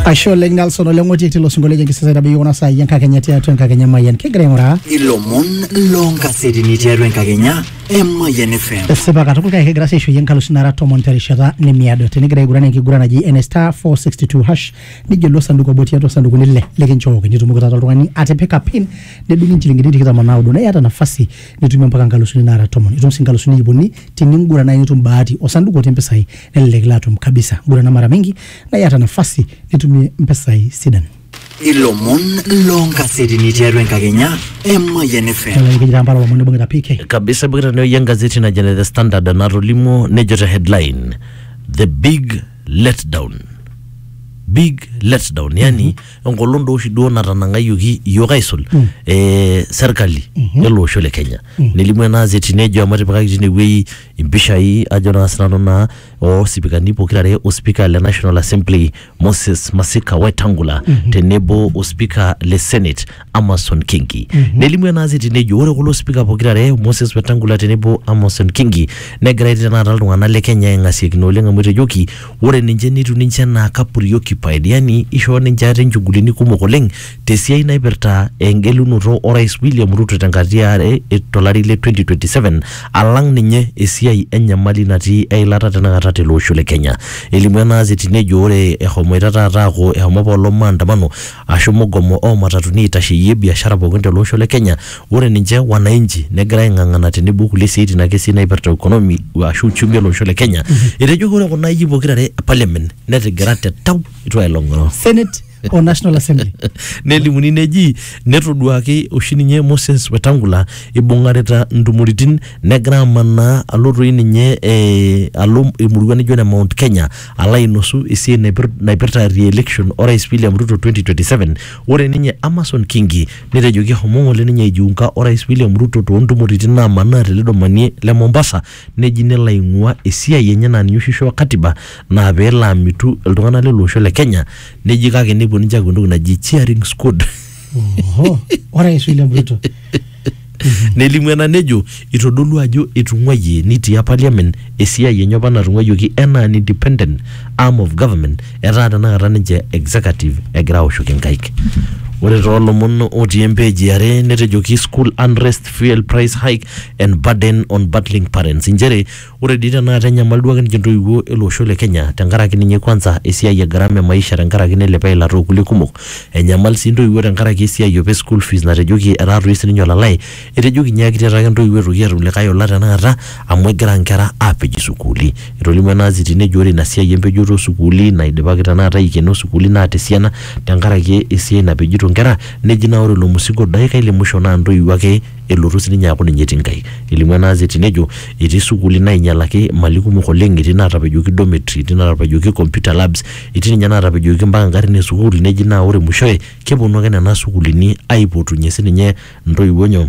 ashe oleng nelson oleng otii tilo sinkolio lenye kisasa itabayie kuna saai enkakenya tiatua enkakenya mayian kigira aing'uraa ilomon loonkasetini tiatua enkakenya emayian fm esipa katukul kake kigira sii aishoyie nkalusi nara tomon terishata nemiado tinigira aiguran enkiguran naji ene star 462 hash nijo ilo sanduku obo tiatua sandukuni ile likinchooki nitumoki taata oltung'ani atipika pin nedung'i inchilingini tikitam o naudo neiyata nafasi nitumie mpaka nkalusuni nara tomon itum sii nkalusuni iip uni tininguran naaji nitum bahati osanduku otii mpisai nelelek ilo atum kabisa gurana mara mingi na iyata nafasi nitumie mpesai sidan ilomon loonkasetini tiatua enkakenya emayian fm kelelek ijira mpala lomon nibungita pk kabisa ibung'ita neoi engazeti najo ne the standard natolimuo nejo te headline the big letdown big letdown yani enkolong doo oshi duo natanang'ayioki iyiook aisul eh, serkali ele osho le kenya nelimu ena azeti nejo amu etipikaki tinewueji impishai ajo naa sinanu naa osipikani pokirare ospika le National Assembly Moses Masika Wetangula tenebo ospika le Senate Amason Kingi nelimu enaasi tenejo ore kulo spika pokirare Moses Wetangula tenebo Amason Kingi negira etii tenakata iltung'anak le Kenya aing'asiakino oleng amu etejoki ore ninche netiu ninche enaa kapuriokipaid yani ishoo ninche ate inchugulini kumok oleng Te siai naipirta engelunoto o Rais William Ruto te nkata e are to lari le 2027 alang ninye esiai e nyamali natii eilata tenakata tele osho le Kenya. Elimu ena azeti nejo ore ehomoita taata aaku ehomo apa olong maandamano aashu mugomo oo matatuni aitasheyie biashara pookin tele osho le Kenya, ore ninche wananchi negira aing'ang'ana tenebo o kulie siaitin ake sii naipirta economy aashu uchumi ele osho le Kenya. Etejoki ore kuna ayie pokira are e parliament netigira te tau eitu ailong'oro. Senate. o National Assembly. nelimuni neji netoduaki oshi ninye Moses Wetangula ibung'arita ntumoritin negira amanaa alo toi ninye eh, alo emurua nijo ne Mount Kenya alo ainosu esiai naipir- naipirta re-election orais William Ruto 2027 ore ninye Amason Kingi netejoki ehomo ng'ole ninye aijiunga orais William Ruto toontumoritin naamanaa tele domani le Mombasa neji nelo aing'ua esiai enye naa ninye oshi ishoo katiba naa peelo amitu iltung'anak lele osho le Kenya neji kake nepuo ninche aaku entoki naji cheering squad Oho, orais William Ruto. nelimu ena nejo itodolu ajo etung'uayie nitia parliament esiai enye apa natung'uayioki enaa an independent arm of government etaa tenakata ninche executive egira aoshoki nkaik ore toolomon otii empeej iare netejoki school unrest fuel price hike and burden on battling parents inchere ore dii tenakata enyamal duake ninche intoiwuo ele osho le kenya tenkaraki ninye kwanza esiai e gharama e maisha tenkaraki neilepa eilata okulie kumok enyamal sii intoiwuo tenkaraki esiai opa e school fees natejoki etaa toi sininye olalai etejoki nyiaki tiataa ake intoiwuo etoki atum likae ola tenakata amu egira inkera apej isukuuli etolimuo ena aziti nejo ore ina siai empejoto osukuuli naidipaki tenakata aikeno isukuuli naata esiana tenkaraki esiai napejito inkera Neji naa ore ilo musigo daikai le musho naa ntoiwuo ake elotu sininye aaku ninye etii Nkai. Elimu ena azeti nejo etii sukuuli nainyalaki mali kumok oleng, etii naatapejoki dormitory, etii naatapejoki computer labs, etii ninye naatapejoki mpaka ngarin e sukuul neji naa ore mushoe keponu ake nena sukuulini aipotunye sininye ntoiwuo nyoo?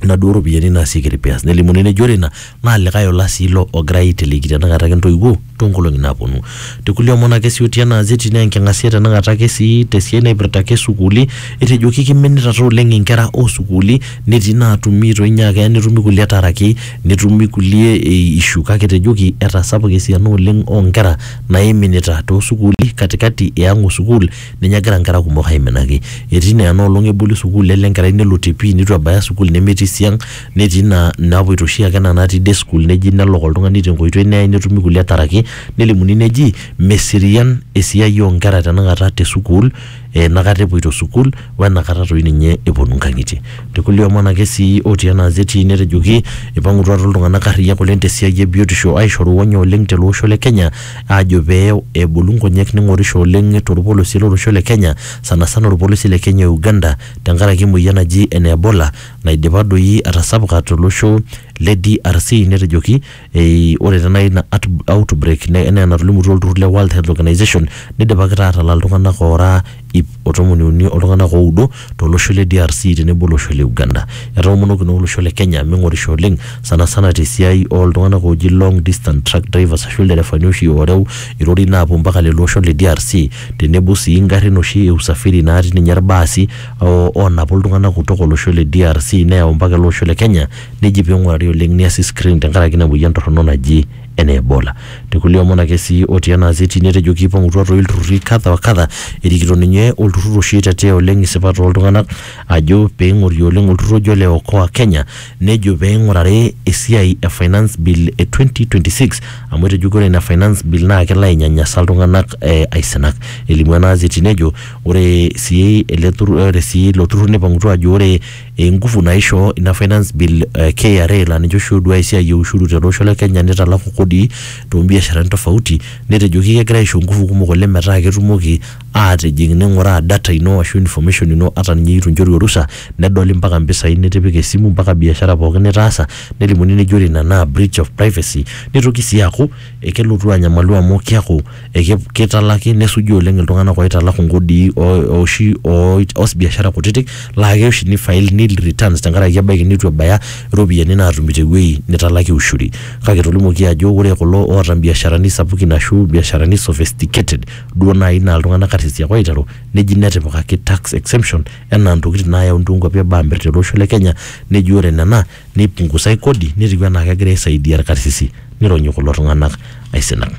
inaduo ropiyiani naasieki repairs nelimuni neji ore ina naa likae ola sii ilo ogirae aiteleki tenakata ake intoiwuo toonkolong'i naaponu tekulie omon ake sii otii ena azeti naa enking'asia tenakata ake sii tesiai naipirta ake sukuuli etejoki kiminitata oleng inkera osukuuli netii inaatumi itu inye aa keya netumi kulie etaraki netumi kulie ei issue kake etejoki etasapuka esiana oleng onkera naiminita tosukuuli katikati e ang o sukuul ninye egira nkera kumok aiminaki etii naa ena olong eboli sukuul nelo enkerai nelo te pii nitu ebaya sukuul nemetii siang netii naa napuoito oshiake ena natii day school neji nelok oltung'ani tenkoitoi neyai netumi kulie taraki nelimuni neji meserian esiai onkera tenakata te sukuul enakata epuoito sukuul wenakata toi ninye eponu inkang'itie tekulie omon ake sii otii ena azeti netejoki ipang'utua taa iltung'anak arriyiak oleng tesiai ebiotisho aishoru onyo oleng tele osho le kenya. aajo pee ebulu nkonyek ning'orisho oleng torpolosie lolosho le Kenya sanasana orpolosie le Kenya o Uganda tenkaraki emoyian naji ene Ebola naidipa doi atasapuka tolosho le DRC netejoki ei ore taa nai ina at- outbreak ne- enaa enatolimutuo olturrur le World Health Organization nidipaki taa atalaa iltung'anak oora ip o tomoni uni oltunganak oudo to losho le DRC tenebo olosho le Uganda. Etoomonoki naa olosho le Kenya mingorisho oleng sanasana te siai oo ltunganak ooji long distance truck drivers ashu ilderefani oshi ooreu irorin aapuo mpaka lelo oshon le DRC tenebo sii ingarin oshi e usafiri naati ninye ilbaasi oonapu iltunganak kutok olosho le DRC neyau mpaka ele osho le Kenya neji pee ingurari oleng neasi screen tenkaraki ina moyian torono naji enaa Ebola. Te kulie omon ake sii otii ena azeti netejo keipang'utua toi ilturrurri kadha wa kadha erikito ninye olturrur oshi oitetea oleng isipat oo ltung'anak ajo pee eing'ori oleng olturrur oji ole Okoa Kenya nejo pee eing'urari esiai e finance bill e 2026 amu etejo ore ina finance bill naa kelo ainyanyasa iltung'anak aisinak. Elimu ena azeti nejo ore sii ele turrur, ore sii ilo turrur neipang'utua aajo ore enguvu naishoo ina finance bill eh, KRA laa ninche oshi ooduaya esiai e ushuru tele osho le Kenya nitalaku kodi toombiasharani tofauti netejoki kegira aisho nguvu kumok oleng metaa ketumoki aatijing ning'uraa data ino ashu information ino ata ninye eitu inchoru orusa nedoli mpaka mpisai nitipika esimu mpaka biashara pookin nitaasa nelimuni neji ore ina naa breach of privacy nitoki sii aaku ekelotu anyamalu amu kiaku eki- kitalaki nesuji oleng iltung'anak oitalaku nkodii o- oshi o- oas biashara kutitik laa keya oshi ni file nil returns tenkaraki ebaiki neitu ebaya iropiyiani naatumi tewuei nitalakie ushuri kake etolimuoki ajo ore kulo oota imbiasharani sapukin ashu imbiasharani sophisticated duo naai naa iltung'anak arisiak oiteru neji netipikaki tax exemption enaa intokitin naayauni toonkuapi eboo amirr tele osho le kenya neji ore nena neipungusai kodi netiu enaa kegira aisaidia irkarsisi nironyi kulo tung'anak aisinak.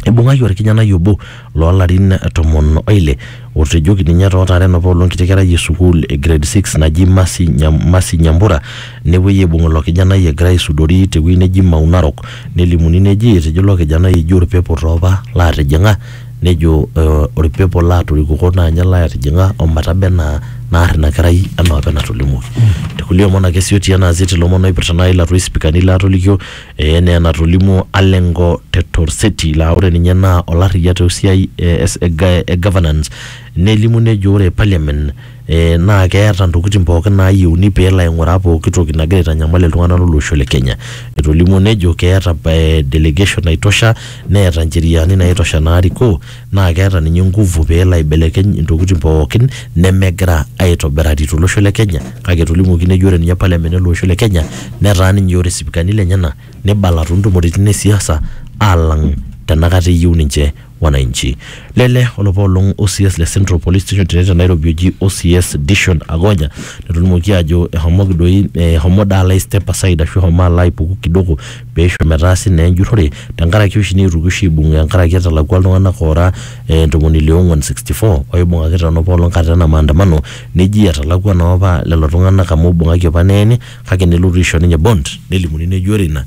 Eibung'aki orkijanai obo loo larin tomon o ile otejoki ninye too taren apa olo enkiti kerai e sukuul e grade six naji Mercy Nyam- Mercy Nyambura nepuoi aibung ilo kijanai egira aisudori tewueji neji Mau Narok nelimuni neji etejo ilo kijanai eji orpepo toopa laatijing'a nejo eh, olpepo laatorikuko naa ninye laatijing'a ometaba enaa naar ina kerai enaa apa enatolimuoki tekulie omon ake sii otii ena azeti ilomon oipirta naaji ilatua ispikani laatolikio eh, enaa enatolimuo Alengo te Torseti laa ore ninye naa olarriyia tosiai eh, es- e ga- e governance nelimu nejo ore parliament eh, naa keeta ntokitin pookin naayieuni pee elo aing'uraa pooki toki nagira aitanyamal iltung'anak lolosho le Kenya. Etolimuo nejo keeta eh, delegation naitosha neeta ncheriani naitosha naarikoo naa keeta ninye nguvu pee elo aibelekeny ntokitin pookin nemegira aitobirari tolosho le Kenya kake etolimuoki nejo ore ninye parliament ele osho le Kenya netaa ninye ore sipikani lenyena nibala toontumoritin e siasa alang tenakata eyieu ninche wananchi. Lele olapa olong OCS le Central Police Station tene te Nairobi oji OCS Dishon Agonya netolimuoki aajo ehomoki doi ehomo daa lai step aside ashu ehomo alo aipuku kidogo peisho metaasi naa enjurrore tenkaraki oshi neetuoki oshi aibung tenkaraki etalakua iltung'anak oora eh, ntomoni ile ong'uan 64 oibung'aki tenopa olong kata ena maandamano neji etalakua naa opa lelo tung'anak amu ibung'aki opa neeni kake nelotu aisho ninye bond nelimuni neji ore ina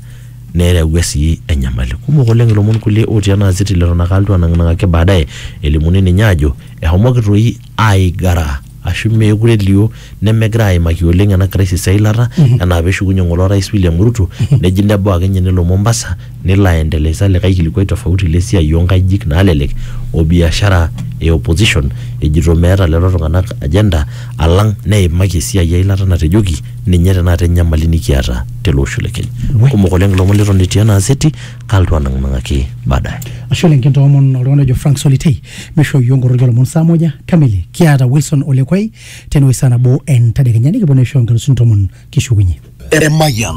Nereawua sii enyamali. Kumok oleng ilomon kulie otii ena aziti leton ake alotu anang'nang'aki baadaye elimuni ninye aajo ehomoki toi aigara ashu meekure elio nemegira aimaki oleng ena crisis eilata enaa peshukunye ng'ole orais William Ruto neji nebau ake ninye nelo Mombasa nelo aendeleisa likae kilikuai tofauti lesiai onkajijik naalelek o biashara e opposition ejito meeta lelo tung'anak agenda alang neimaki esiai eilata natejoki ninye tenakata enyamali nikiata tele osho le Kenya. We. Kumok oleng ilomon leton etii ena aseti, kalotu anang'nang'aki baadaye. Ashe oleng kintoomon oltung'ani ojo Frank Solitei meishoo iyiook nkoroki oolomon saa moja kamili. Kiata Wilson Olekwai tenewueji saa nabo entadekenya nikiponu aisho inkalusuni tomon kishukunye. Emayian.